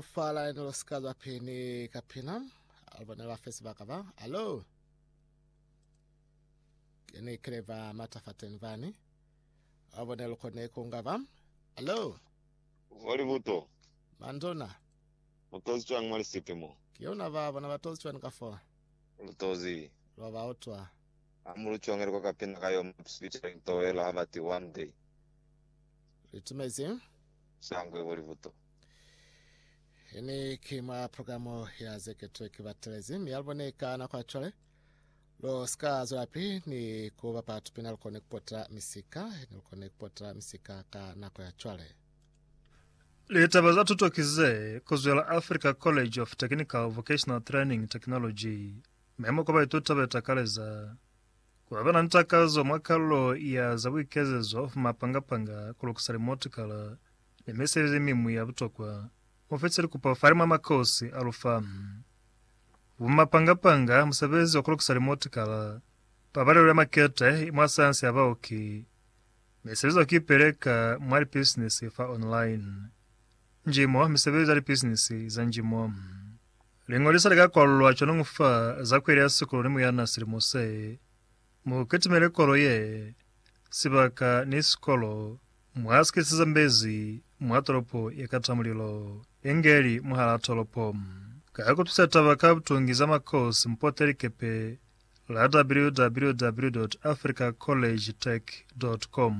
Fa laeno lo sika lwa peni ka pina, albone lwa fesi baka ba, alo. Keni kile ba mata fa teni bani. Albone lukone kunga ba, alo. Voli buto. Mandona. Mutozi cwani mwa lisipi mo? Ki yona ba bona batozi cwani ka fo? Lutozi. Lwa ba utwa. Ha mu lu congeli kwa ka pina ka yo Maps featuring Towela ha ba ti One Day. Litumezi. Shangwe voli buto. Ini ki mwa programu ya zeketo ki batelezi mi albone ka nako ya cwale lo sika zulapi ni kuba batu pina lukone kupota misika ni lukone kupota misika ka nako ya cwale Litaba za tuto ki ze kuzwela Africa College of Technical Vocational Training Technology memo kwa baituta ba eta kale za kuba bana ni takazo mwa kalulo ya za buikezezo fuma panga panga ku lukisa limotikala Ni meseli ze miñwi ya butokwa mo fetisa likupo fale mwa makosi a lu fa. Bumapanga-panga, musebezi wa ku lukisa limotikala, pabalelo ya makete i mwa sayansi ya baoki, misebezi ya ku ipeleka mwa lipisinisi fa online, njimo, misebezi ya lipisinisi za njimo. Liñolisa li ka kwalulwa cwanoñu fa za ku elea sikulu ni muyana silimo se. Mu kitimele kolo ye, sibaka ni sikolo, mwa sikiseza mbezi mwa tolopo ye kata mulilo, inge li mwahalaa tolopo. Ka kutwisa taba ka butungi za makosi mpote likepe la www.africacollegetech.com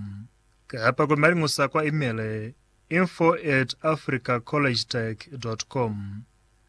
kapa ku maliñusa kwa imele, info at africacollegetech.com.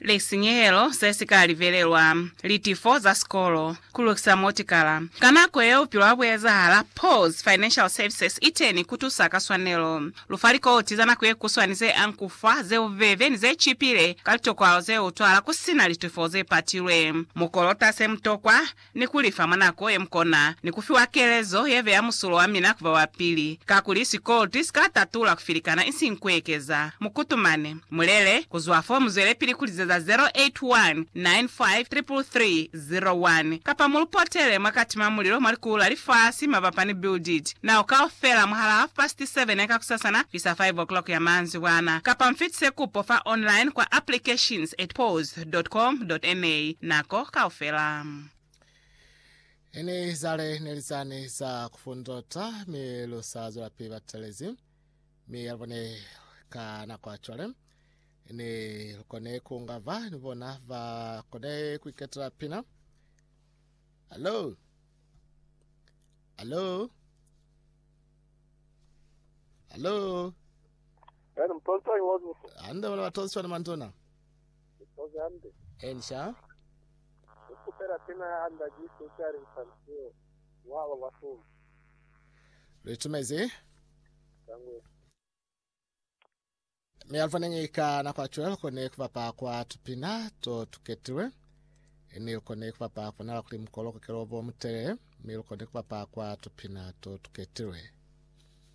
lisinyehelo se si ka livelelwa, litifo za sikolo, ku lukisa motikala. Ka nako yeo bupilo ha bu ezahala. Paul's Financial Services i teni ku tusa ka swanelo. Lu fa likoti za nako ye kuswani ze anku fa, ze bubebe, ni ze cipile ka litokwalo ze utwahala ku si na litifo ze patilwe. Mu kolota se mu tokwa, ni ku li fa mwa nako ye mu kona, ni ku fiwa kelezo ye beya musulo wa mina ku ba wa pili, kakuli sikoloti si ka tatula ku filikana isiñi ku ekeza. Mu kutumane. Mu lele. Ku zwa fo mu zwelepili ku lizeza 0819533301, kapa mu lu potele mwa kati mwa mulilo mwa likulu la lifasi mabapa ni Build It Now kaufela mwahal'a half past seven ya kakusasana kuisa five o'clock ya manzibwana, kapa mu fitise kupo fa online kwa applications at pause. www.com.ma nako kaufela. Ini zale ne li zani za ku fundota, mi lu sa zwelapili ba telezi. Mi ya bone ka nako ya cwale, ne lu kone ku nga ba ni bona ba kone ku iketela pina. Hallo? Hallo? Hallo? Yaani mtonsa iwazuso. Hande bona batonswa ni mandona. Elisha. Lu itumezi. Mi alifaniñi ka nako ya cwale lukoni kubapa kwa tupina to tuketilwe, ni lukoni kubapa kubonala kuli mukolo kukelo bo mutelele, mi lukoni kubapa kwa tupina to tuketilwe.